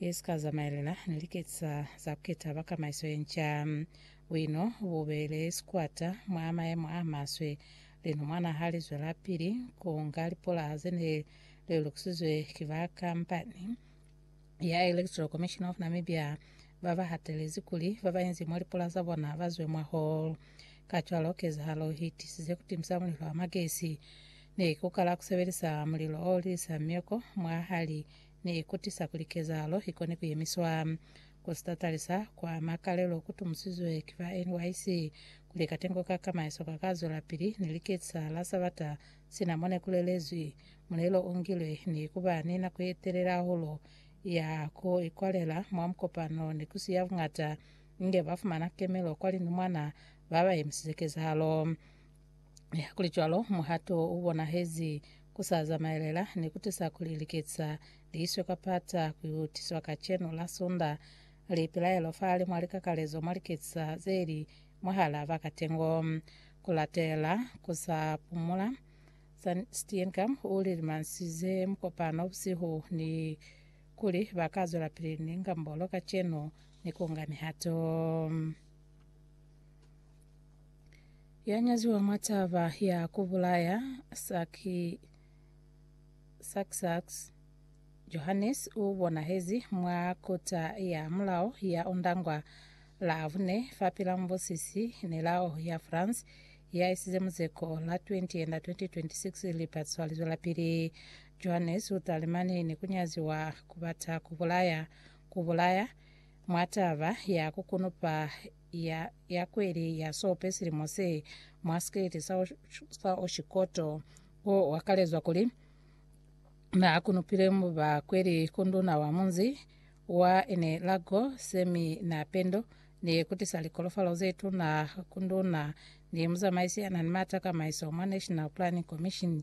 i si ka zamaelela ni liketisa za ku keta ba kamaiso ye nca. Buino bu beile sikwata mwa mayemo a maswe. Lino mwana ha li zwelapili ku nga lipulaha ze ne li lukisizwe ki ba kampani ya Electoral Commission of Namibia, ba ba hatelezi kuli ba bainzi mwa lipulaha za bona ba zwe mwaho. Kacwalo, kezahalo i tisize ku timisa mulilo wa magesi ni ku kala ku sebelisa mulilo o lisa mioko mwahali ne ikutisa kuli kezahalo ikone kuyemiswa. Ku sitatalisa kwa makalelo kutumusizwe ki ba NYC kuli katengo ka ka maeso ka ka zwelapili ni liketisa la Sabata sina mone ku lelezwi mulelo o ngilwe ni kuba ni nako ye telele hahulu ya ku ikwalela mwa mukopano ni kusiya buñata inge ba fumana kemelo kwa linumwana ba ba yemisize kezahalo. Hakulicwalo, muhato u bonahezi ku sa zamaelela ni ku tusa kuli liketsa li iswe ka pata ku yo tiswa kacenu la Sunda li pilaelo fahali mwa likakalezo mwa liketsa ze li mwahal'a ba katengo. Ku latela ku sa pumula, San Steenkamp u lilimansize mukopano busihu ni kuli ba ka zwelapili ni ngambolo kacenu ni ku nga mihato. Ya nyaziwa mwa taba ya ku bulaya Saki Saksaks Johannes u bonahezi mwa kota ya mulao ya Ondangwa Lavune fa pila mubusisi nelao ya France ya isize muzeko la 20 enda 2026 lipatso lizwelapili. Johannes u talimani ni ku nyaziwa ku bata ku bulaya ku bulaya mwa taba ya ku kunupa ya ya kweli ya sope silimo se mwa sikeleti sa, sa oshikoto o wakalezwa kuli na kunupile mu ba kweli ku nduna wa munzi wa ene lago semi na pendo ni kutisa likolofalo ze tuna ku nduna ni muzamaisi ya na ni mata kamaiso mwa National Planning Commission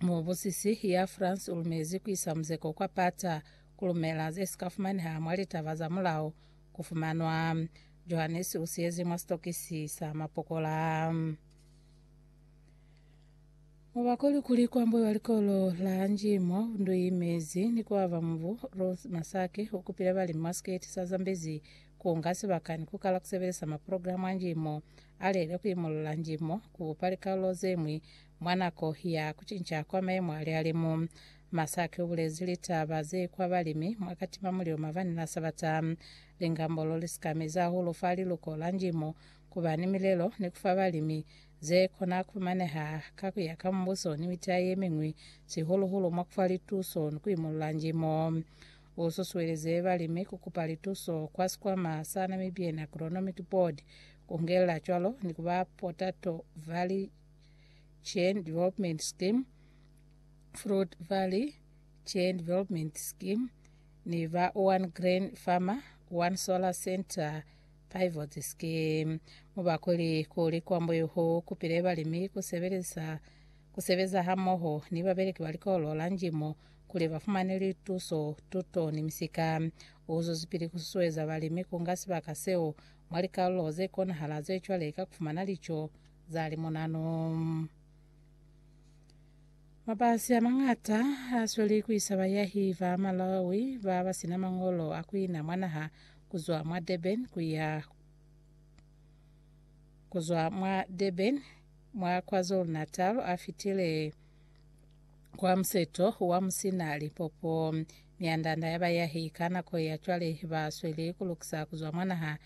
Mubusisi ya France ulumezi kuisa muzeko kwa pata kulumela zesika fumaneha mwa litaba za mulao kufumanwa. Johannes usiyezi mwa sitokisi sa mapokola. Mubakoli kuli kwambwe wa likolo la Njimo Nduyimezi ni kuaba mubu Ruth Masake ukupile balimi mwa siketi sa Zambezi kuunga sibaka ni kukala kusebelisa maprogramu a njimo alelile kuimulula njimo kubupa likalolo zemwi Mwa nako ya kucinca kwa mayemo a lihalimu, Masaki ubulezi litaba ze kwa balimi mwa katima mulilo mabani la Sabata. Lingambolo lisika mezi hahulu fa liluko la Njimo kuba ni milelo ni kufa balimi ze kona kufumaneha ka kuya ka Mubuso ni mita yemiñwi, sihulu hulu mwa kufa lituso ni kuimulula Njimo. U susuelize balimi ku kupa lituso kwa sikwama sa Namibian Agronomic Board, ku ngelela cwalo ni ku ba potato valley Chain Development Scheme, Fruit Valley Chain Development Scheme ni ba One Grain Farmer One Solar Center Pivot Scheme mubakweli kuli kwambo yuhu kupile balimi kusebelisa kusebeza hamoho ni babeleki ba likolo la njimo kuli bafumane lituso tuto ni misika uzuzipili kususueza balimi kunga sibaka seo mwa likalulo ze konahala ze cwale ka kufumana lico za limunanu. Mabasi a mañata a sweli ku isa bayahi ba Malawi ba ba sina mañolo a ku ina mwa naha ku zwa mwa Durban ku ya ku zwa mwa Durban mwa KwaZulu-Natal a fitile kwa museto wa Musina Lipopo. Myanda-nda ya bayahi ka nako ya cwale ba sweli ku lukisa ku zwa mwa naha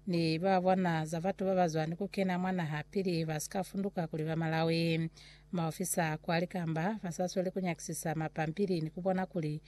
ni ba bwana za batu ba ba zwani ku kena mwa naha pili ba si ka funduka kuli ba Malawi. Maofisa a kwa likamba ba sa sweli ku nyakisisa mapampili ni ku bona kuli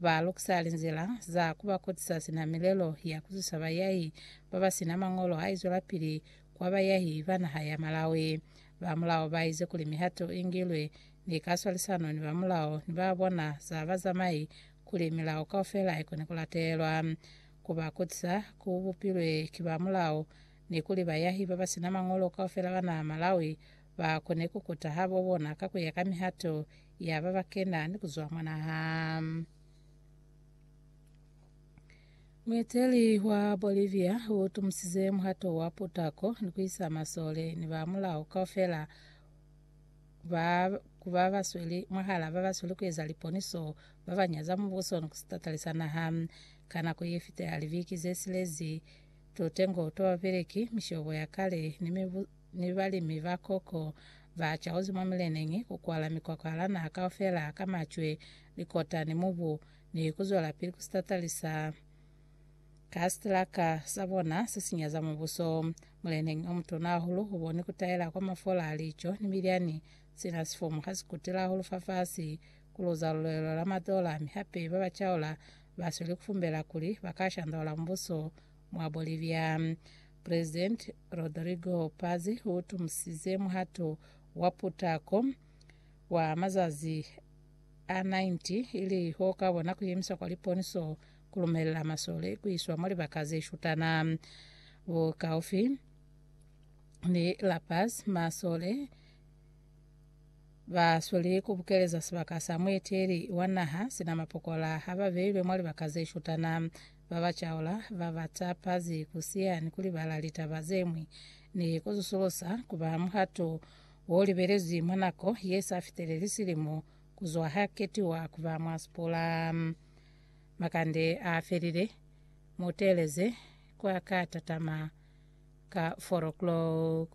ba lukisa linzila za ku ba kotisa sina milelo ya ku zusa bayahi ba ba si na mañolo a izwelapili kwa bayahi ba naha ya Malawi. Ba mulao ba ize kuli mihato i ngilwe ni ka swalisano ni ba mulao ni ba bwana za bazamai kuli milao kaufela i kone ku latelwa. ku ba kutisa ku bupilwe ki ba mulao, ni kuli bayahi ba ba si na mañolo kaufela ba naha Malawi ba kone ku kuta habo bona ka ku ya ka mihato ya ba ba kena ni ku zwa mwa naha. Mueteli wa Bolivia u tumusize muhato wa putako ni ku isa masole ni ba mulao kaufela ba ku ba ba sweli mwahala ba ba sweli ku eza liponiso ba ba nyaza mubuso ni ku sitatali sa naha. Ka nako ye fiteha libiki ze silezi, tutengo twa babeleki, mishobo ya kale, ni mibu, ni balimi ba koko ba cauzi mwa mileneñi ku kwala mikwakwahala naha kaufela ka macwe, likota, ni mubu, ni ku zwelapili ku sitatalisa. Ka sitilaka sa bona se si nyaza mubuso, muleneñi o mutuna hahulu u boni ku taela kwa mafola a lico ni milyani. Sina sifomo ha si kutile hahulu fafasi, ku luza lulwelo la matola, mi hape ba ba caula ba sweli ku fumbela kuli ba ka shandaula mubuso mwa Bolivia. Presidenti Rodrigo Paz u tumusize muhato wa putako wa mazazi a 90 ili o ka bona ku yemiswa kwa liponiso ku lumelela masole ku iswa mwa libaka ze shutana bukaufi ni La Paz, masole ba sweli ku bukeleza sibaka sa mueteli wa naha sina mapokola ha ba beilwe mwa libaka ze shutana. Ba ba caula ba ba tapazi ku siya ni ku libala litaba ze ñwi ni ku zusulusa ku ba muhato o libelezwi mwa nako ye sa fiteleli silimo ku zwa ha ketiwa ku ba mwansipula. Makande a felile, mu teeleze kwa ka tatama ka four o'clock.